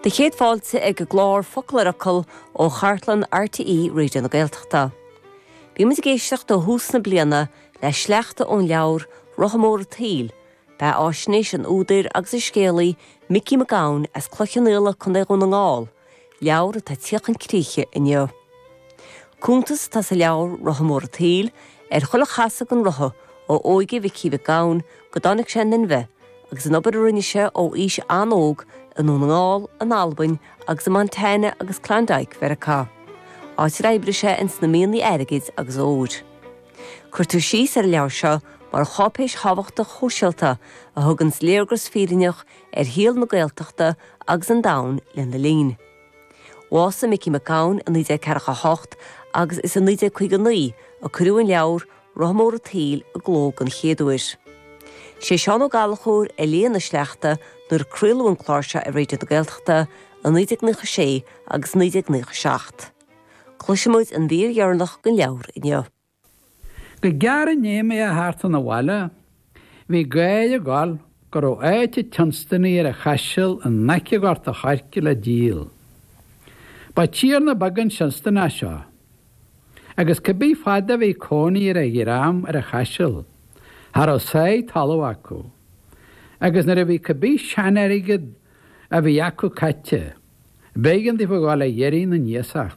Do chéad fáilte ag an gclár Focal ar Fhocal ó chartlann RTÉ Raidió na Gaeltachta. Bíonn muid ag éisteacht ó thús na bliana le sleachta ón leabhar Rotha Mór an tSaoil, beathaisnéis an údair agus an scéalaí Micí Mac Gabhann as Cloich Cheann Fhaola, Co. Dhún na nGall, Leabhar atá ag tíocht chun críche inniu. Cuntas atá sa leabhar, Rotha Mór an tSaoil, ar chuile chasadh den rotha ó óige Mhicí Mhic Gabhann go dtáinig sé in inmhe agus an obair a rinne sé ó aois an-óg i nDún na nGall, in Albain agus i Montana agus Klondike Mheiriceá, áit ar oibrigh sé ins na mianaigh airgid agus óir. Cuirtear síos ar an leabhar seo mar cháipéis thábhachtach shóisialta a thuganns léargas fírinneach ar shaol na Gaeltachta agus an domhain lena linn. Bhásaigh Micí Mac Gabhann i 1948 agus is i 1959 a cuireadh an leabhar, Rotha Mór an tSaoil, i gcló den chéad uair. Sé Seán Ó Gallchóir a léigh na sleachta nuair a craoladh an clár seo ar Raidió na Gaeltachta i 1996 agus 1997. Cloisfidh muid an mhír dheireanach den leabhar inniu. Go gearr i ndiaidh mé a theacht 'un a' bhaile bhí gáir ag gabháil go rabh áit an tSionstanaigh ar a' Chaiseal i n-aice Ghort a' Choirce le díol. Ba tiarna beag an Sionstanach seo, agus cibé fad a bhí cónaí ar a dhream ar a' Chaiseal, cha rabh a sáith talamh acu, agus nuair a bhí cibé sean-airgead a bhí acu caithte, b'éigean daofa a ghabháil a dh'iarraidh na n-iasacht.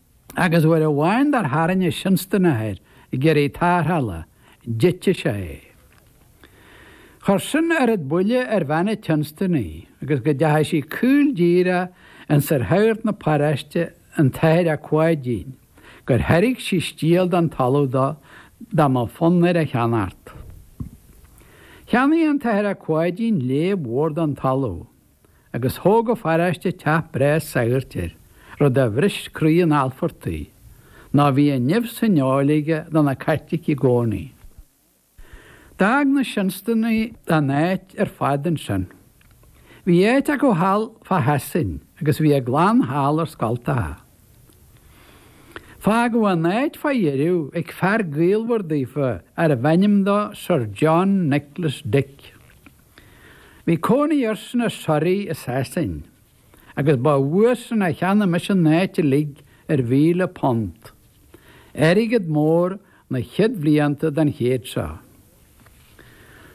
Agus uair amháin dar tharraing an Sionstanach air ag iarraidh tarrthála, d'eitigh sé é. Chuir sin oiread buile ar bhean an tSionstanaigh agus go dteachaigh sí caol díreach ionsar shagart na paráiste, an tAthair Ac Pháidín, gur thairg sí stiall den talamh dó dá mba fonn air a cheannacht. Cheannaigh an tAthair Ac Pháidín léab mhór den talamh. agus thóg an pharáiste teach breá sagairt air, rud a bhris croí an Alfartaigh, ná bhí an nimh san fheoil aige do na Caitlicigh i gcónaí. D'fhág na Sionstanaigh an áit ar fad ansin. Bhí áit acu thall fá Shasain agus bhí a gclann thall ar scoltacha. Fágadh an áit fá dheireadh ag fear gaolmhar daofa arbh ainm dó Sir John Nicholas Dick. Bhí cónaí airsean i Surrey i Sasain agus ba uaidhsan a cheannaigh mise an áit uilig ar mhíle punt, airgead mór na chéad bhlianta den chéad seo.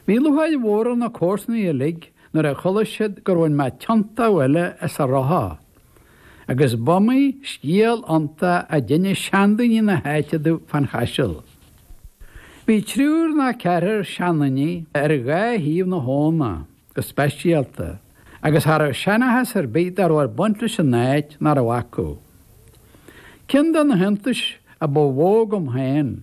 Bhí lúcháir mhór ar na comharsanaigh uilig nuair a chuala siad gur bhain mé tiontú eile as an rotha agus b'iomaí scéal ionta a d'innis seandaoine na h-áite domh fán Chaiseal. Bhí triúr ná ceathrar seandaoine ar dhá thaobh na h-abhna go speisialta agus cha rabh seanachas ar bith dá rabh ag baint leis an áit nach rabh acu. Ceann de na h-iontais a ba mhó agam féin